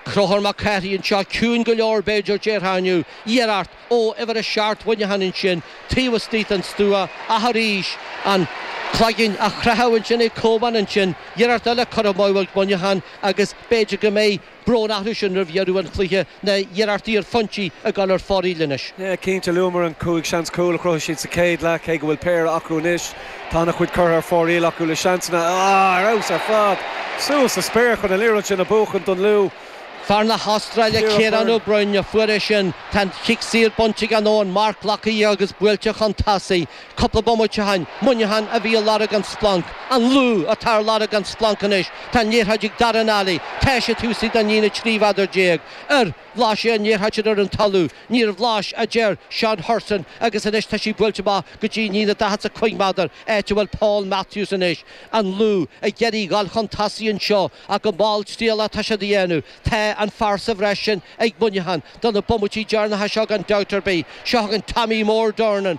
Conchúr Mac Cárthaigh anseo, ciúin go leor b'fhéidir, déarfá inniu. Iarracht ó uimhir a seacht Mhuineacháin ansin, taobh istigh den stua, ach arís, an cloigeann á chroitheadh ansin ag Coban ansin, iarracht eile curtha amú ag Muineachán agus b'fhéidir go mbeidh brón orthu sin roimh dheireadh an chluiche, na hiarrachtaí ar phointí ag gabháil ar fóraoil anois. Yeah, cinnte, luamar an cúig seans cúl a chruthaigh siad sa chéad leath, cé go bhfuil péire acu anois. Tá ana chuid curtha ar fóraoil acu le seansanna. Á, ar fheabhas ar fad. Suas sa spéir chun an liathróid sin a bhuachan don Lú. Fear na hAstráile Ciarán Ó Broin a fuair é sin. Tá an cic saor bainte aige nó an marc glactha agus buailte chun tosaigh. Cúpla bomaite ó shin, Muineachán a bhí ag lorg an splanc. An Lú atá ar lorg an splanc anois. Tá an liathróid ag Daire Nally. Tá sé taobh istigh den líne 13 mheadar ar. Bhlais sé an liathróid ar an talamh. Níor bhlais, a deir Seán Hurson, agus anois tá sí buailte amach go dtí an líne daichead 's a cúig méadar, áit a bhfuil Paul Matthews anois. An Lú, ag iarraidh dhul chun tosaigh anseo, ach go malltriallach atá siad á dhéanamh. Tá an fear sa bhreis sin ag Muineachán, do na bomaití deireanacha seo gan dabht ar bith. Seo againn Tommy mór Durnin,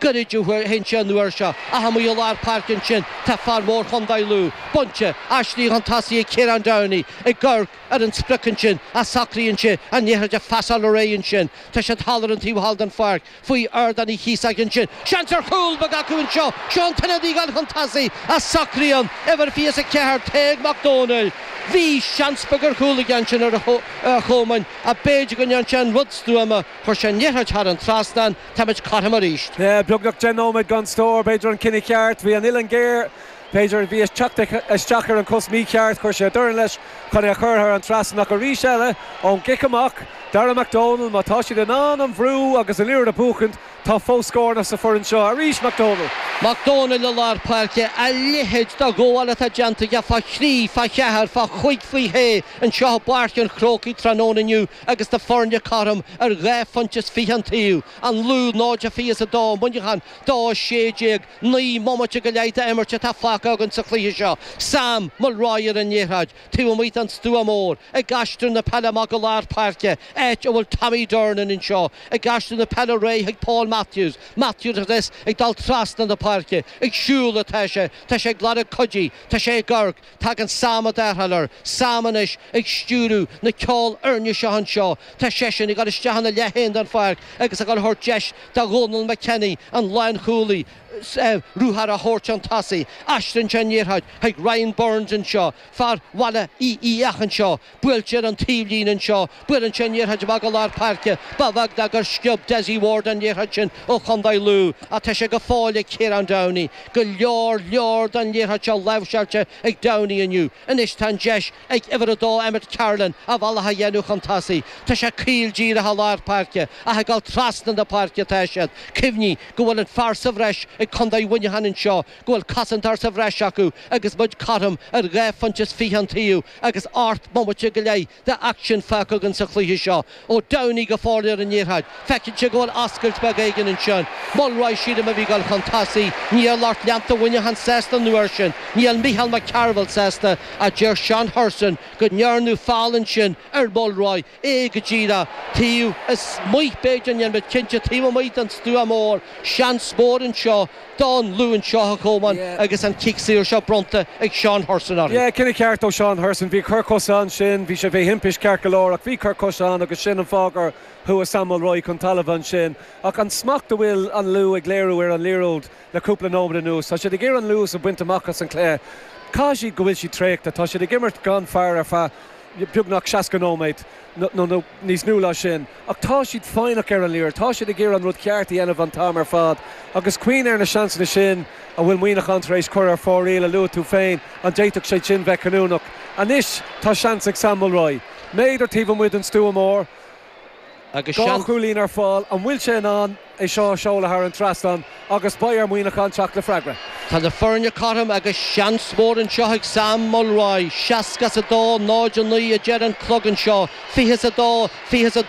Goirid a théann sé an uair seo, ach amuigh i lár páirce ansin tá fear mór Chondae Lú, bainte, aistrithe chun tosaigh ag Ciarán Downey ag amharc ar an sprioc ansin ach socraíonn sé an liathróid a phasáil ar aghaidh ansin. Tá siad thall ar an taobh thall den pháirc faoi Ardán Uí Chíosóig ansin. Seans ar chúl! Beidh acu anseo. Seo an t-ionadaí ag gabháil chun tosaigh ach socraíonn uimhir 24, Tadhg Mac Dónaill, Bhí seans beag ar chúl aige ansin ar a chomhair ach b'fhéidir go ndearn sé an rud stuama, chuir sé an liathróid thar an trasnán, Táimid cothrom arís. Beagnach deich nóiméad gan scór. B'fhéidir an cinneadh ceart. Bhí an uillinn géar. B'fhéidir bhí sé ag teacht isteach ar an cos mícheart. Chuir sé a dhorn leis chun é a chur thar an trasnán ach arís eile ón gcic amach. Dara McDonnell, má tá siad in ann an bhrú agus an aer a bhuachaint, tá fós scóranna sa fhoireann seo. Arís McDonnell. McDonnell i lár páirce. A leithéid de ghabháil atá déanta aige fá thrí, fá cheathair, fá chúig fá shé anseo i bPáirc an Chrócaigh tráthnóna inniu. agus na foirne cothrom ar dhá phointe is fiche an taobh, an Lú 0-22 Muineachán 2-16, naoi mbomaite go leith d'imirt atá fágtha againn sa chluiche seo. Sam Mulroy ar an liathróid, taobh amuigh den stua mór, ag aistriú na peile amach go lár páirce, áit a bhfuil Tommy Durnin anseo, ag aistriú na peile ar aghaidh chuig Paul Matthews, Matthews ag dul trasna na páirce, ag siúl atá sé, tá sé ag lorg cuidithe, tá sé ag amharc, Tagann Sam i dtarrtháil air, Sam anois ag stiúrú na ceolfhoirne seo anseo. Tá seisean ag dul isteach ina leith féin den pháirc agus ag dul a thabhairt deis do Dhónal McKenny, an lánchúlaí, ruathar a thabhairt chun tosaigh. Aistríonn sé an liathróid chuig Ryan Burns anseo, fear Bhaile Uí Fhiaich anseo, Buailtear an taobhlíne anseo. Buaileann sé an liathróid amach go lár páirce. Ba bheag nár gur sciob Dessie Ward an liathróid sin ó Chondae Lú ach tá sé go fóill ag Kieran Downey. Go leor leor don liathróid seo láimhseáilte ag Downey inniu. Anois tá an deis ag uimhir a dó Emmet Carolan a bhealach a dhéanamh chun tosaigh. Tá sé caol díreach i lár páirce ach ag dul trasna na páirce atá siad. Cuimhnigh go bhfuil an fear sa bhreis ag Condae Mhuineacháin anseo, go bhfuil cosantóir sa bhreis acu agus muid cothrom ar dhá phointe is fiche an taobh. agus ocht mbomaite go leith de aicsean fágtha againn sa chluiche seo ó Downey go foirléar an dtiocfadh feiceann sé go bhfuil oscailt beag éigin ansin. Mulroy sílim a bhí ag gabháil chun tosaigh níl lucht leanta Mhuineacháin sásta nó ansin níl Micheál Mac Cearbhaill sásta ach deir Seán Hurson go ndearnadh feall ansin ar Mulroy é go díreach taobh amuigh b'fhéidir níl muid cinnte taobh amuigh den stua mór, seans mór anseo don Lú anseo a Chomáin agus an cic saor seo bronnta ag Seán Hurson orthu. Yeah, cinneadh ceart ó Seán Hurson. Bhí cor coise ansin, bhí sé trí thimpist ceart go leor ach bhí cor coise ann agus sin an fáth gur chuaigh Sam Mulroy chun talaimh ansin. Ach an smacht a bhfuil an Lú ag léiriú ar an liathróid le cúpla nóimead anuas, tá siad ag iarraidh an luas a bhaint amach as an chluiche, caithfidh sé go bhfuil siad traochta, tá siad ag imirt gan fear ar feadh. beagnach 60 nóiméad nó níos mó ná sin ach tá siad foighneach ar an liathróid, tá siad ag iarraidh an rud ceart a dhéanamh an t-am ar fad agus cuimhnigh ar na seansanna sin a bhfuil Muineachán tar éis cur ar fóraoil a luaigh tú féin, an d'fhéadfadh siad sin bheith cinniúnach? Anois tá seans ag Sam Mulroy méadar taobh amuigh den stua mór. agus dhá chúilín ar fáil. An bhfuil sé in ann é seo a seoladh thar an trasnán agus beidh ar Mhuineachán teacht le freagra. Tá na foirne cothrom agus seans mór anseo ag Sam Mulroy. Seasca is a dó, náid a naoi a deir an clog anseo. Fiche is a dó, fiche is a dó.